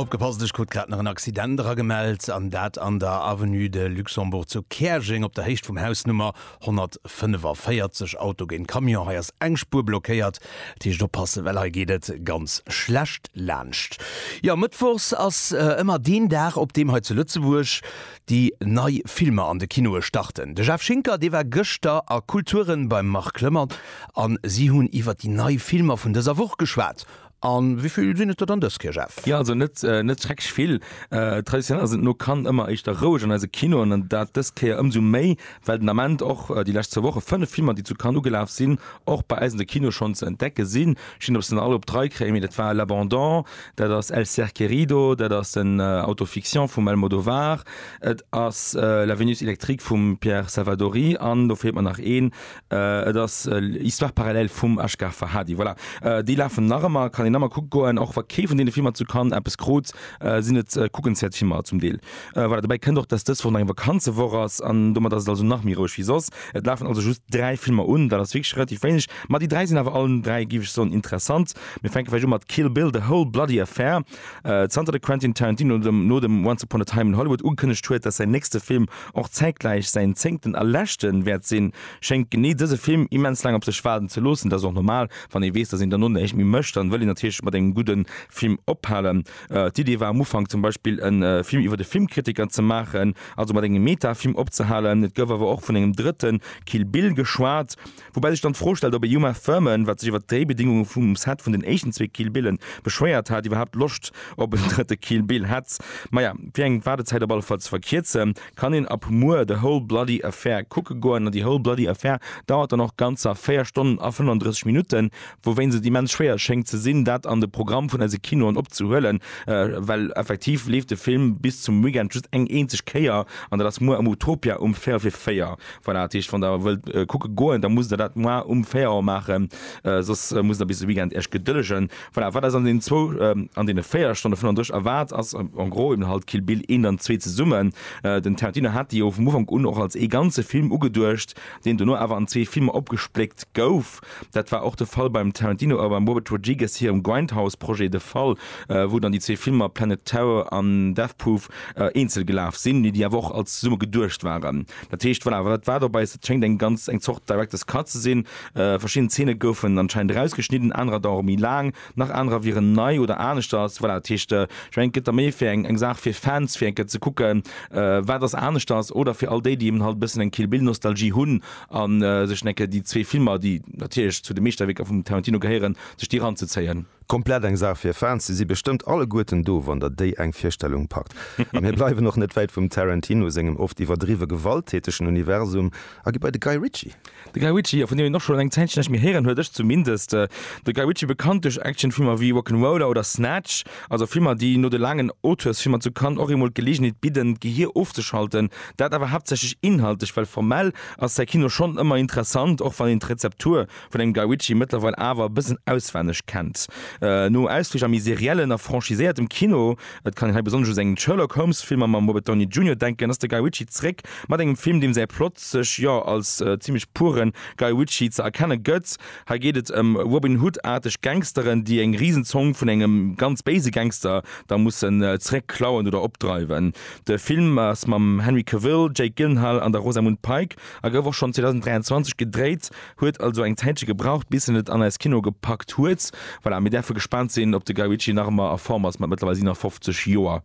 Opgepasst, ech krut grad nach en Accident eragemellt, an dat an der Avenue de Luxembourg zu Käerjeng op der Héicht vum Haus Nummer 145. Auto géint Camion, hei ass eng Spuer blockéiert, dat heescht oppassen, well hei geet et ganz schlecht laanscht. Jo, Mëttwochs ass ëmmer deen Dag, op deem hei zu Lëtzebuerg déi nei Filmer an de Kinoe starten. De Jeff Schinker, dee war gëschter a Kulturen beim Marc Lëmmert an si hunn iwwer déi nei Filmer vun dëser Woch geschwat. A wéi vill sinn et der dann dës Kéier, Jeff? Jo, also net net schrecklech vill. Traditionell ass et no Cannes ëmmer éischter roueg an eise Kinoen an dat dës Kéier ëmsou méi, Well den Ament och déi lescht zwou Woche 5 Filmer, déi zu Cannes ugelaf sinn, och bei eis an de Kinoe schonn ze entdecke sinn. Ech sinn op se nach all op d'Rei kréien, mee dat war L'Abandon, dat ass El Ser Querido, dat ass en Auto-fiction vum Almodovar, et ass La Vénus électrique vum Pierre Salvadori an do feelt mer nach een, et ass Histoires parallèles vum Asghar Farhadi. Voilà, déi lafen nach ëmmer, kann een nach ëmmer kucke goen. Och wa kee vun deene Filmer zu Cannes eppes krut, sinn et kuckenswäert Filmer zum Deel. Voilà, dobäi kënnt och, dass dës Woch nach eng Vakanzewoch ass an domat ass et also nach méi roueg wéi soss. Et lafen also just dräi Filmer un, dat ass wierklech relativ wéineg, ma déi dräi sinn awer allen dräi, géif ech soen, interessant. Mir fänke vläicht u mat Kill Bill, The Whole Bloody Affair. Zanter de Quentin Tarantino no dem Once Upon a Time in Hollywood ugekënnegt huet, dass säin nächste Film och zäitgläich säin zéngten a leschte wäert sinn, schéngt genee dëse Film immens laang op sech waarden ze loossen. Dat ass och normal, wann ee weess, dass een dono näischt méi mécht, dann wëll een natierlech mat engem gudde Film ophalen. D'Idee war am Ufank zum Beispill e Film iwwer e Filmkritiker ze maachen, also mat engem Meta-Film opzehalen. Et gouf awer och vun engem drëtte Kill Bill geschwat. Woubäi sech dann d'Fro stellt, ob e Uma Thurman, wat sech iwwer d'Dréibedingunge vum Set vun den éischten zwee Kill Bille beschwéiert hat, iwwerhaapt Loscht op en drëtte Kill Bill hätt. Maja, fir eng Waardezäit op alle Fall ze verkierzen, kann een ab muer The Whole Bloody Affair kucke goen. An déi Whole Bloody Affair dauert dann och ganzer 4 Stonnen a 35 Minutten. Wouwéinst et immens schwéier schéngt ze sinn, dat an de Programm vun eise Kinoen opzehuelen, well effektiv leeft de Film bis zum Weekend just eng eenzeg Kéier, an dat ass muer am Utopia um véierel fir véier. Voilà, dat heescht, wann Der wëllt kucke goen, da musst Der dat muer um véier Auer maachen, soss musst Der bis de Weekend Iech gedëllegen. Voilà, wat eis an deenen zwou, an deene véier Stonne 35 erwaart, ass en gros eben halt Kill Bill 1 an 2 zesummen. Den Tarantino hat déi jo vum Ufank un och als ee ganze Film ugeduecht, deen dono awer an zwee Filmer opgespléckt gouf. Dat war och de Fall beim Tarantino a beim Robert Rodriguez hirem Grindhouse-Projet de Fall, wou dann déi zwee Filmer Planet Terror an Death Proof eenzel gelaf sinn, mee déi awer och als zesumme geduecht waren. Dat heescht, voilà, wat war dobäi? Et schéngt eng ganz eng Zort Director's Cut ze sinn. Verschidden Zeene goufen anscheinend erausgeschnidden, anerer dauere méi laang, nach anerer wieren nei oder aneschters. Voilà, dat heescht, ech mengen, et gëtt da méi fir eng eng Saach fir Fans, fir eng Kéier ze kucken, wat ass aneschters, oder fir all déi, déi eben halt e bëssen eng Kill Bill-Nostalgie hunn A sech dann enke déi zwee Filmer, déi natierlech zu de Meeschterwierker vum Tarantino gehéieren, sech déi eranzezéien. Komplett eng Saach fir Fans. Si si bestëmmt alleguerten do, wann der déi eng Virstellung packt. A mir bleiwen och net wäit vum Tarantino sengem oft iwwerdriwwe gewalttätegen Universum a gi bei de Guy Ritchie. De Guy Ritchie, jo, vun deem een och schonn eng Zäitchen näischt méi héieren huet, ech zumindest. De Guy Ritchie, bekannt duerch Actionfilmer wéi Rock'n'Roller oder Snatch. Also Filmer, déi no de laangen Auteursfilmer zu Cannes och eemol d'Geleegenheet bidden, d'Gehier ofzeschalten. Dat awer haaptsächlech inhaltlech, well formell ass säi Kino schonn ëmmer interessant, och wann een d'Rezeptur vun engem Guy Ritchie mëttlerweil awer e bëssen auswenneg kennt. No Ausflich a méi seriellen a franchiséiertem Kino, et kann een hei besonnesch u seng Sherlock Holmes-Filmer mam Robert Downey Junior denken, ass de Guy Ritchie zréck mat engem Film, deem säi Plot sech, jo, als zimlech puren Guy Ritchie ze erkenne gëtt. Hei geet et ëm Robin Hood-aarteg Gangsteren, déi eng Risenzong vun engem ganz béise Gangster da mussen zeréck klauen oder opdreiwen. De Film ass mam Henry Cavill, Jake Gyllenhaal an der Rosamund Pike a gouf och schonn 2023 gedréit. Huet also eng Zäitche gebraucht, bis en et an eis Kinoe gepackt huet. Voilà, mir däerfe gespaant sinn, ob de Guy Ritchie nach ëmmer a Form ass mat mëttlerweil 57 Joer.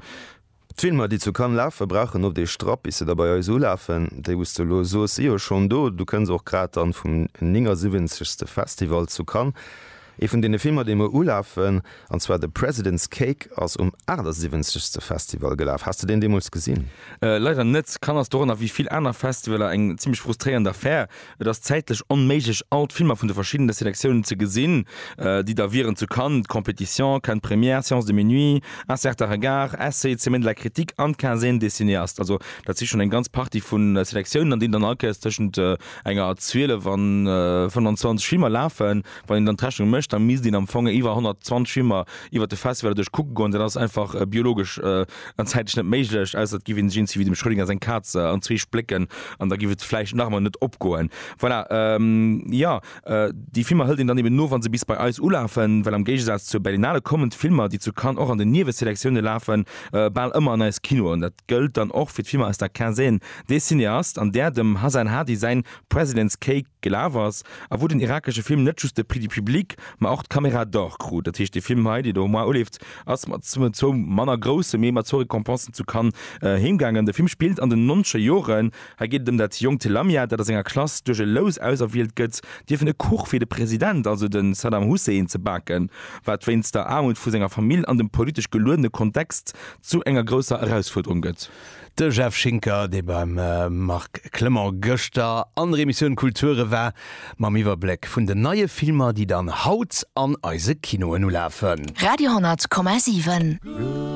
D'Filmer, déi zu Cannes lafen, brauchen oft ee Strapp, bis se da bei eis ulafen. Déi, wou s de elo soos, si jo schonn do. Du kënns och grad dann vum 79. Festival zu Cannes. Ee vun deene Filmer, déi muer ulafen, an zwar The President's Cake, ass um 78. Festival gelaf. Has de deen deemools gesinn? Leider net. Cannes ass doranner, wéi vill aner Festivaler, eng zimlech frustréierend Affär. Et ass zäitlech onméiglech all d'Filmer vun de verschiddene Selektiounen ze gesinn, déi da wieren, zu Cannes d'Compétition, Cannes d'Première, Séance de minuit, Un certain regard, Essai, Semaine de la critique an d'Quinzaine des cinéastes. Also dat si schonn eng ganz Partie vu Selektiounen, an deenen dann all Kéiers tëschent enger 12 a 25 Filmer lafen. Wann een dann d'Rechnung mécht, da misst een am Fong iwwer 120 Filmer iwwert de Festival duerch kucke goen. Dat ass einfach biologesch An zäitlech net méiglech, ausser et giff een sech eenzi wéi dem Schrödinger seng Kaz an zwee splécken, an da giff et vläicht nach emmer net opgoen. Voilà, jo, déi Filmer hëlt een dann eben no, wa se bis bei eis ulafen, well am Géigesaz zur Berlinale kommen d'Filmer, déi zu Cannes och an den Nieweselektiounen lafen, bal ëmmer an eis Kinoen. Dat gëllt dann och fir d'Filmer aus der Quinzaine des cinéastes, an där dem Hasan Hadi säin President's Cake gelaf ass, a wou den irakesche Film net just de Prix du public, ma och d'Caméra d'Or krut. Dat heescht, dee Film hei, dee do am Mois uleeft, ass mat zwou manner grousse, mee mat zwou Récompensen zu Cannes heemgaangen. De Film spillt an den nonzeger Joren. Hei geet et ëm dat jonkt Lamia, dat a senger Klass duerch e Lous auserwielt gëtt, dierf en e Kuch fir de President, also de Saddam Hussein, ze baken, wat wéinst der Aarmut vu senger Famill an dem politesch geluedene Kontext zu enger grousser Erausfuerderung gëtt. De Jeff Schinker, dee beim Marc Clement gëschter an der Emissioun Kulture war, mam Iwwerbléck vun den neie Filmer, déi dann haut an eise Kinoen ulafen. Radio 10,7.